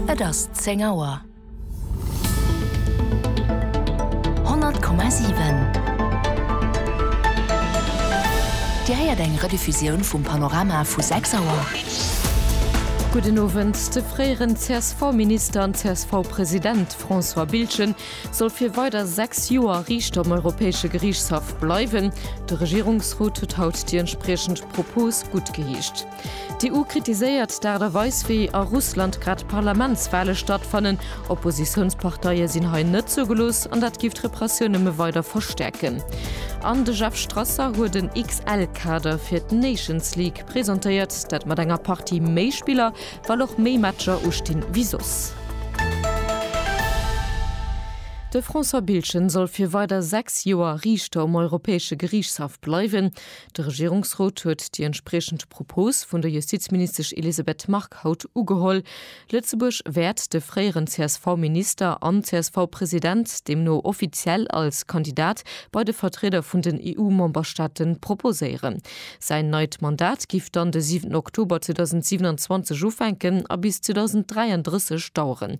Et ass 10 Auer. 100,7 Dir héiert eng Rediffusioun vum Panorama vu 6 Auer. Gudden Owend. De fréieren CSV-Minister an CSV-President François Biltgen soll fir weider 6 Joer Riichter um Europäesche Geriichtshaff bleiwen. De Regierungsrot huet haut déi entspriechend Propos guttgeheescht. D'EU kritiséiert d'Aart a Weis wéi a Russland grad d'Parlamentswale stattfannen. Oppositiounsparteie sinn hei net zougelooss an dat géif d'Repressioun nëmme weider verstäerken. An de Jeff Strasser huet en XL-Kader fir d'Nations League presentéiert. Dat mat enger Partie méi Spiller, well och méi Matcher ustinn wéi soss. De François Biltgen soll fir weider 6 Joer Riichter um Europäesche Geriichtshaff bleiwen. De Regierungsrot huet déi entspriechend Propos vun der Justizministesch Elisabeth Margue haut ugeholl. Lëtzebuerg wäert de fréieren CSV-Minister an CSV-President deemno offiziell als Kandidat bei de Vertrieder vun den EU-Memberstaate proposéieren. Säin neit Mandat géif dann de 7 Oktober 2027 ufänken a bis 2033 daueren.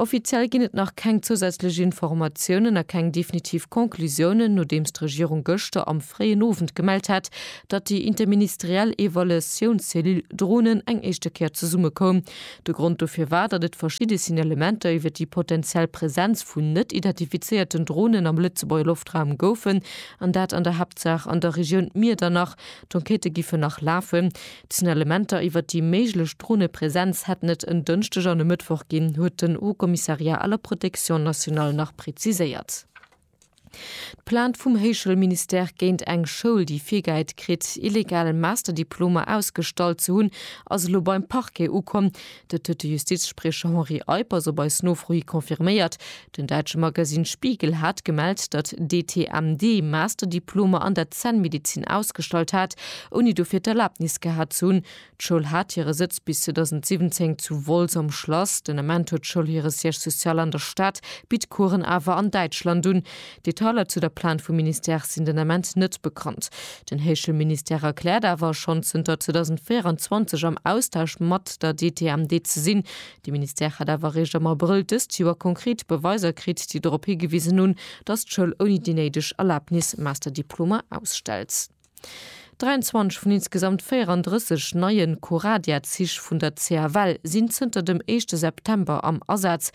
Offiziell ginn et nach keng zousätzlech Informatiounen a keng definitiv Conclusiounen, nodeems d'Regierung gëschter am fréien Owend gemellt hat, datt déi interministeriell Evaluatiounscellule Dronen eng éischte Kéier zesummekoum. De Grond dofir war, datt et verschidde Signalementer iwwer déi potenziell Presenz vun net identifizéierten Dronen am Lëtzebuerger Loftraum goufen, an dat an der Haaptsaach an der Regioun Miedernach. D'Enquêtë giffen nach lafen. D'Signalementer iwwer déi méiglech Dronepresenz hätten et en Dënschdeg an e Mëttwoch ginn, huet den Haut Commissariat à la protection nationale nach preziséiert. D'Plainte vum Héichschoulministère géint eng Schoul, déi virgehäit kritt, illegal Masterdiplomer ausgestallt ze hunn, ass elo beim Parquet ukomm. Dat huet de Justizspriecher Henri Eippers op eis Nofro hi confirméiert. Den däitsche Magasinn Spiegel hat gemellt, datt d'ETMD Masterdiplomer an der Zännmedezin ausgestallt hat, ouni dofir d'Erlaabnis gehat ze hunn. D'Schoul hat hire Sëtz bis 2017 zu Wolz am Schlass. Den Ament huet d'Schoul hire Siège social an der Stad, bitt Coursen awer an Däitschland un. Detailer zu der Plainte vum Ministère sinn den Ament net bekannt. Den Heeschel Ministère erkläert awer, schonn zënter 2024 am Austausch mat der DTMD ze sinn. De Ministère hätt awer eréischt am Abrëll dëst Joer konkret Beweiser kritt, déi dorop higewisen hunn, datt d'Schoul ouni déi néideg Erlabnis Masterdiplomer ausstellt. 23 vun insgesamt 34 neie Coradia-Zich vun der CFL sinn zënter dem éischte September am Asaz.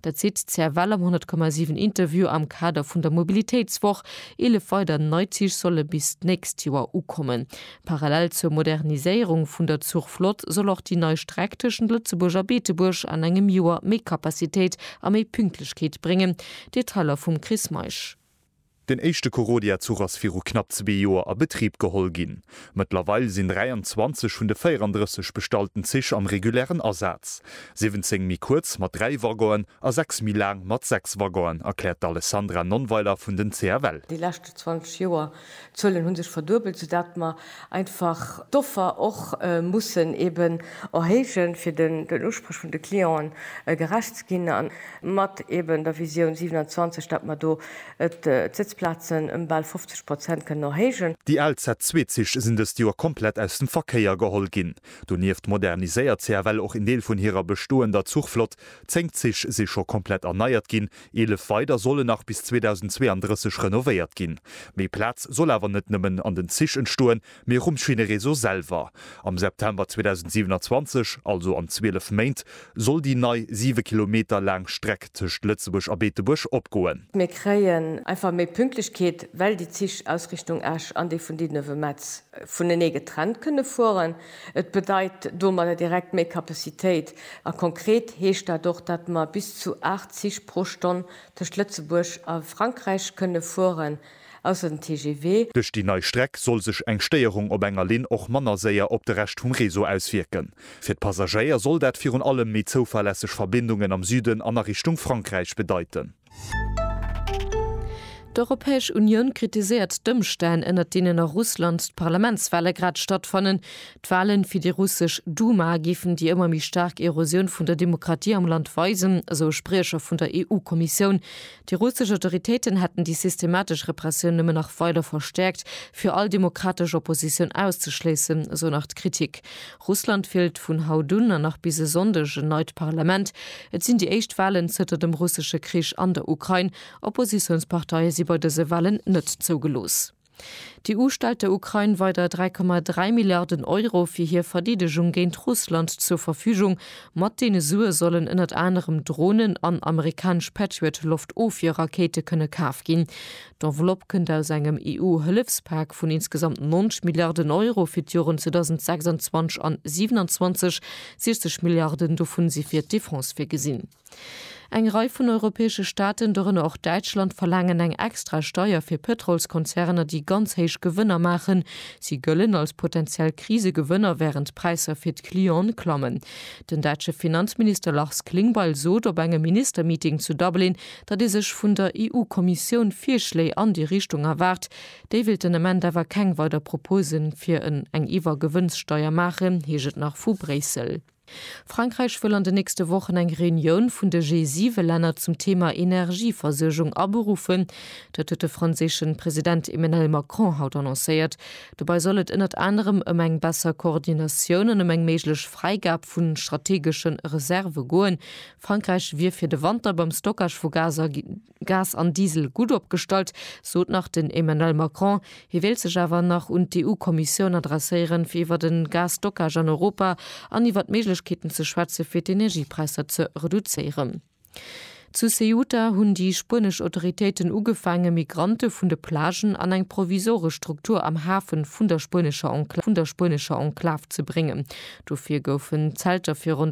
Dat seet d'CFL am 100,7 Interview am Kader vun der Mobilitéitswoch. Eelef weider nei Zich solle bis d'nächst Joer ukommen. Parallel zur Moderniséierung vun der Zuchflott soll och déi nei Streck tëschent Lëtzebuerg a Beetebuerg an engem Joer méi Kapazitéit a méi Pünktlechkeet bréngen. Detailer vum Chris Meisch. Den éischte Korodia-Zuch ass viru knapp zwee Joer a Betrib geholl ginn. Mëttlerweil sinn 23 vun de 34 bestallten Zich am regulären Asaz. 17 méi kuerz mat dräi Waggonen a sechs méi laang mat sechs Waggonen, erkläert d'Alessandra Nonnweiler vun den CFL. Déi leschte 20 Joer, d'Zuelen hu sech verduebelt, soudatt mer einfach d'Offer och mussen eben erhéijen, fir den Usprech vun de Clienten gerecht ze ginn, an mat eben der Visioun 27, datt mer do d'Sëtzplazen ëm bal 50 Prozent kënnen erhéijen. Déi al Z-Zweezich sinn dëst Joer komplett aus dem Verkéier geholl ginn. Donieft moderniséiert CFL och een Deel vun hirer bestoender Zuchflott. Zéng Zich si scho komplett erneiert ginn, Eelef weider solle nach bis 2032 renovéiert ginn. Méi Plaz soll awer net nëmmen an den Zich entstoen, mee och um Schinnereseau selwer. Am September 2027, also an 12 Méint, soll déi nei 7 Kilometer laang Streck tëscht Lëtzebuerg a Beetebuerg opgoen. Mir kréien einfach méi Pünktlechkeet, well déi Zich aus Richtung Esch an déi vun Didenove-Metz vunenee getrennt kënne fueren. Et bedeit domadder direkt méi Capacitéit a konkret heescht dat och, datt mer bis zu 8 Zich pro Stonn tëscht Lëtzebuerg a Frankräich kënne fueren, ausser den TGV. Duerch déi nei Streck soll sech eng Stéierung op enger Linn och manner séier op de Rescht vum Réseau auswierken. Fir d'Passagéier soll dat virun allem méi zouverlässeg Verbindungen am Süden an a Richtung Frankräich bedeiten. D'Europäesch Unioun kritiséiert d'Ëmstänn, ënner deenen a Russland d'Parlamentswale grad stattfannen. D'Walen fir déi russesch Duma géifen déi ëmmer méi staark Erosioun vun der Demokratie am Land weisen, esou e Spriecher vun der EU-Kommissioun. Déi russesch Autoritéiten hätten déi systematesch Repressioun nëmmen nach weider verstäerkt, fir all demokratesch Oppositioun auszeschléissen, esou nach d'Kritik. Russland wielt vun haut un an nach bis e Sonndeg en neit Parlament. Et sinn déi éischt Walen zënter dem russesche Krich an der Ukrain. Oppositiounsparteie si bei dëse Walen net zougelooss. D'EU stellt der Ukrain weider 3,3 Milliarden Euro fir hir Verdeedegung géint Russland zur Verfügung. Mat deene Sue sollen ënnert anerem Dronen an amerikanesch Patriot-Loftofwierrakéite kënne kaf ginn. D'Enveloppe kënnt aus engem EU-Hëllefspak vun insgesamt 90 Milliarden Euro fir d'Joren 2026 an 27, 60 Milliarden dovun si fir d'Defense virgesinn. Eng Rei vun europäesche Staaten, dorënner och Däitschland, verlaangen eng extra Steier fir Pëtrolskonzerner, déi ganz héich Gewënner maachen. Si gëllen als potentiell Krisegewënner, wärend d'Präisser fir d'Clienten klammen. Den däitsche Finanzminister Lars Klingbeil sot op engem Ministermeeting zu Dublin, datt ee sech vun der EU-Kommissioun Virschléi an déi Richtung erwaart. Déi wéilt den Ament awer keng weider Propose fir en eng Iwwergewënnssteier maachen, heescht et nach vu Bréissel. Frankräich wëll an den nächste Wochen eng Reunioun vun de G7-Länner zum Thema Energieversuergung aberuffen. Dat huet de franséische President Emmenel Macron haut annoncéiert. Dobei soll et ënnert anerem ëm eng besser Koordinatioun an ëm eng méiglech Fräigab vu strategesche Reserve goen, Frankräich wier fir de Wanter beim Stockage vu Gas an Diesel gutt opgestallt, sot nach den Emmanuel Macron. Hie wéilt sech awer nach un d'EU-Kommissioun adresséieren, fir iwwer e Gas-Stockage an Europa an iwwer d'Méiglechkeeten ze schwätzen, fir d'Energiepräisser ze reduzéieren. Zu Ceuta hunn déi spuenesch Autoritéiten ugefaangen, Migrante vun de Plagen an eng provisoresch Struktur am Hafe vun der spuenescher Enklav ze bréngen. Dofir goufen Zelter fir ronn